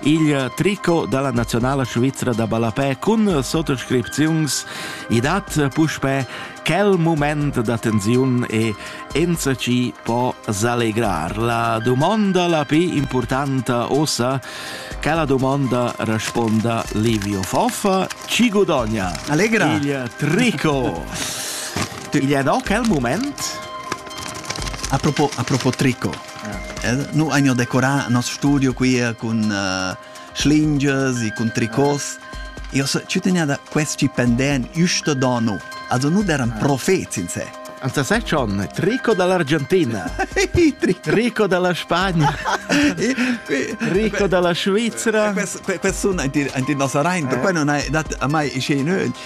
il tricot dalla nazionala svizra da ballapè cun sottoscripziuns i dat puspè quel moment da tensiun e enza ci può s'allegrar. La domanda la più importanta ossa che la domanda risponda Livio Foffa ci guadagna Allegra il tricot Il è no quel moment A propos, a propos tricot, nu hagnu decorà nos studio quia cun uh, schlingias e cun tricos. Io so, ci tenia da questi pendent iusto dono. Also nu eran profets in se. Anzi, sai John, trico dall'Argentina, rico dalla Spagna, rico dalla Svizzera. Quest persona in ti non sarà in, per non hai dat a mai scene.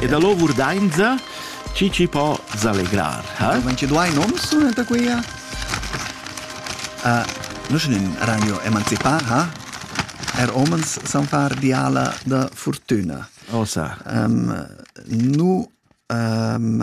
E da lo vurdainza chi ci po s'allegrar, ha? Ma ci duai noms da quia? Uh, nu sun in ragno emancipà, ha? Er homens san far diala da fortüna. Osa. Um, nu... Um,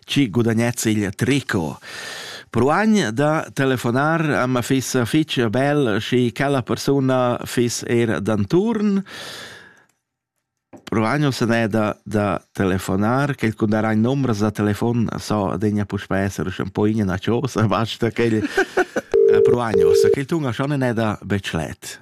chi gudagness il tricot. Proagn da telefonar a ma fiss fich bel schi quella persuna fiss eir d'anturn. Proagno se n'è da, da telefonar, che kun darà in numero da telefon, so degna puspè esser schon poi in cosa, basta che il Proagno, se che il tunga schon ne da Bechlet.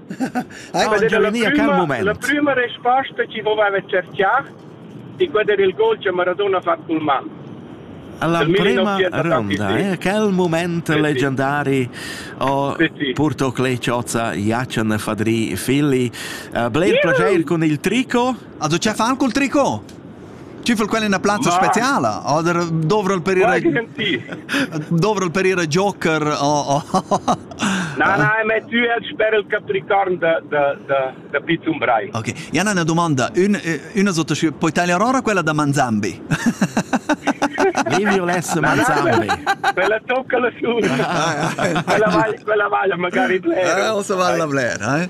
Hai mangià vegnì a quel mument? La prüma resposta chi voveva tscherchar di quella del gol che Maradona ha fatto col man. Alla prima ronda, eh? quel moment leggendari ho porto Clay Ciozza, Jacen Fadri Filli. Uh, Bled yeah. piacere con il trico? Also, ce fan col trico? Ci vol quella ina plazza Ma... speciala oder dovrel per ir dovrel per ir a joker o Na na, ma tu el sper il capricorn da da da da Pizzum Brai. OK. Jan una domanda, un una sotto poi tagliar ora quella da Manzambi. Levi lesse Manzambi. Quella tocca la su. Quella vaglia, quella vaglia magari bler. Eh, o se vale la bler, eh.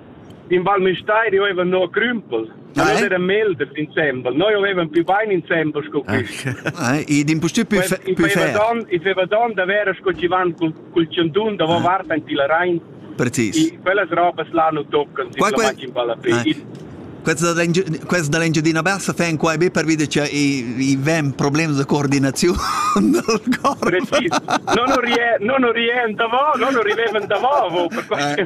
In Val Müstair io avevan no crümpel. Ma non era melder insembel, noi avevan più bain insembel sco quist. Id impustü pü fer. I feva don da vera sco chi van cul tschendun davo vart aint il Rain. Precis. E quellas robas là nu toccan, si la machin balla Questa da l'Engiadina Bassa fa quai be pervi che i vegn problems de coordinaziun dal corp. Precis. Non rien, non rien davant, non arrivem davant per quai.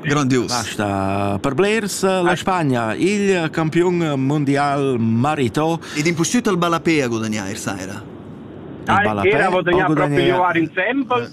Grandius. Basta per blers la Spagna, il campion mondial marató. Ed impustüt al Balapè a gudagnare sera. Il Balapè a gudagnare. Era proprio in sempels.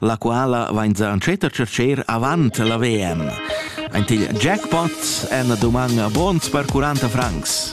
la quala vain sa entschet a tschercher avant la VM. Ein til jackpots èn duman bons per 40 francs.